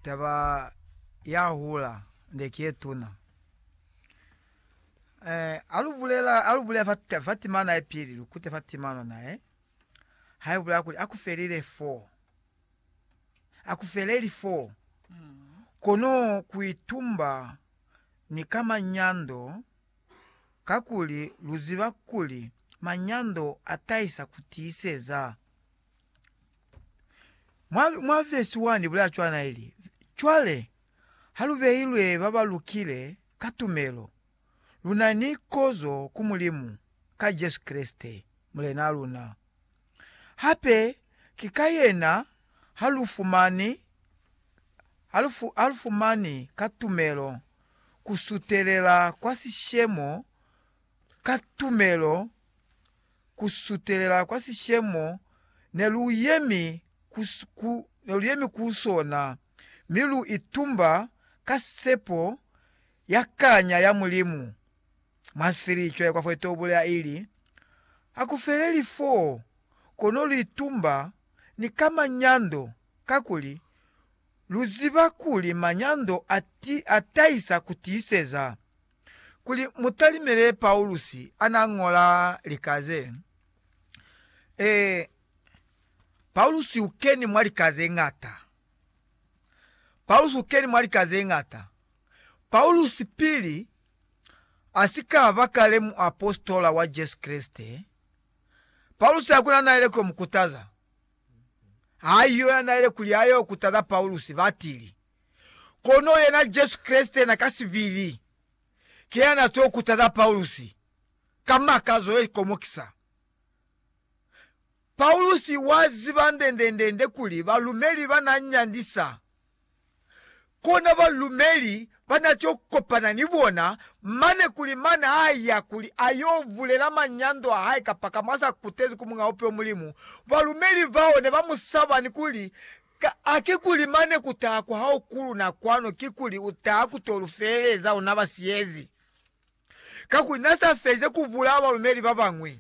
taba ya hula nde ki ye tuna. ha lu bulela ha lu bulela fat- fatimana ya pili lu kute fatimana nae ha bulela kuli aku felile foo, aku feleli foo kono ku itumba ni ka manyando kakuli lu ziba kuli manyando a tahisa ku tiiseza. Mwa, mwa vesi 1 ibulela cwana ili, Cwale, ha lu beilwe ba ba lukile ka tumelo, lu na ni kozo ku Mulimu ka Jesu Kreste, Mulenaa luna. Hape ki ka yena ha lu fumani, ha lu, fu, ha lu fumani ka tumelo ku sutelela kwa sishemo ka tumelo ku sutelela kwa sishemo ne lu yemi ku, ku, ne lu yemi ku sona, mi lu itumba ka sepo ya kanya ya Mulimu. Mwa 3, cwale kwa fo ite ubulela ili, Hakufeleli foo, kono lu itumba ni ka manyando, kakuli lu ziba kuli manyando a ti, a tahisa ku tiiseza. kuli mu talimele Paulusi a n'a ñola lika ze. Ee, Paulusi u keni mwa lika ze ñata. Paulusi u keni mwa lika ze ñata. Paulusi pili a si ka ba kale muapositola wa Jesu Kreste, Paulusi hakuna n'a ile k'o mu kutaza. Ha yo ya n'a ile kuli a y'o kutaza Paulusi, batili. Kono yena Jesu Kreste na ka sibili ki ya na to kutaza Paulusi ka makazo ye komokisa. Paulusi wa ziba ndendendende kuli balumeli ba na nyandisa, kona balumeli ba na to kopana ni bona mane kuli mane a ya kuli a yo bulela manyando a hae kapakamo a sa kutezi ku Muñaupi wa Mulimu. Balumeli bao ne ba mu saba ni kuli Ka a kikuli mane kutaha kwa hao kuluna kwanu kikuli utaha kuto lufeleza ona ba siyezi? Kakuli na sa feze kubulaa balumeli babañwi.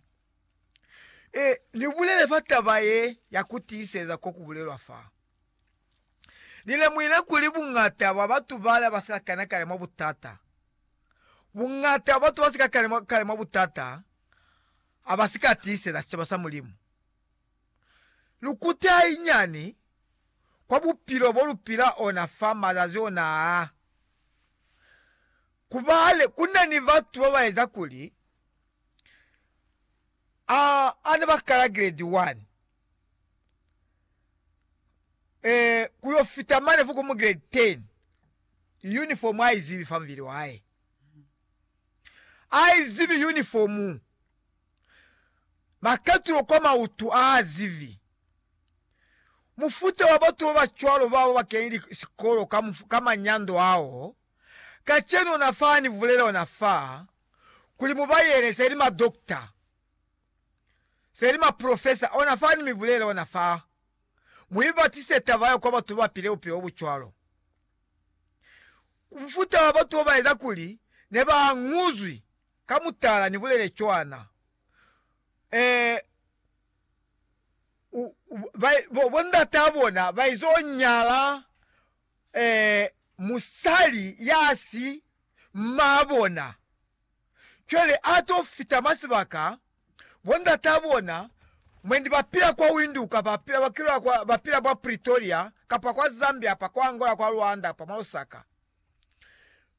E, ni bulele fa taba ye ya kutiiseza ko kubulelwa fa. Ni lemuhile kuli buñata bwa batu bale ba si ka kena kale mwa butata. Buñata bwa batu ba si ka kena kale mwa butata ha ba si ka tiiseza sicaba sa Mulimu. Lukute hainyani kwa bupilo bo lu pila ona fa mazazi ona aa. Kubale, ku na ni batu ba ba eza kuli a ana ba kala gredi 1, ee, ku yo fita mane fo komu gredi 10, yunifomu a i zibi fa mubili wa hae. A i zibi yunifomu ba ketilwe kwa mautu a zibi. Mufuta wa batu ba ba cwalo bao ba kenile sikolo ka, ka manyando ao. Kacenu ona fa ha ni bulela ona fa, kuli mu ba yele, se li madokta, se li maprofesa, ona fa ni mi bulela ona fa, mu ibatise taba yeo kwa batu ba ba pile bupilo bo bu cwalo. Mufuta wa batu bao ba eza kuli ne ba añuzwi Ka mutala ni bulele cwana, ee, u, u, ba, bo, bo ndataa bona ba izo nyala, ee, musali ya si maa bona. Cwale ato fita mwa sibaka, bo ndataa bona mwendi ba pila kwa Windhoek, ba pila, ba pila kwa, ba pila mwa Pretoria, kapa kwa Zambia apa, kwa Angola, kwa Rwanda apa, mwa Lusaka.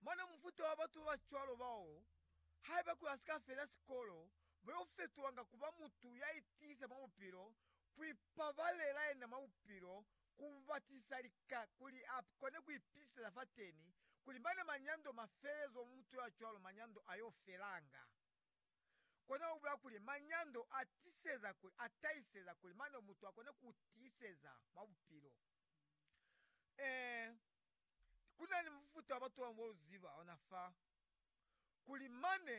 Mane mufuta wa batu babacwalo bao, haiba kuli asika feza sikolo, bayo fetulanga kuba mutu ya itiisa mwa bupilo, ku ipabalela yena mwa bupilo, ku batisa lika kuli a kone ku ipitisela fateni, kuli mane manyando ma fele zwa mutu ya cwalo manyando ayo felanga. Kona u bula kuli manyando a tiseza kuli a tahiseza kuli mane mutu a kone ku tiiseza mwa bupilo. Ee, Ku na ni mufuta wa batu ba bangwe wa u ziba ona fa, kuli mane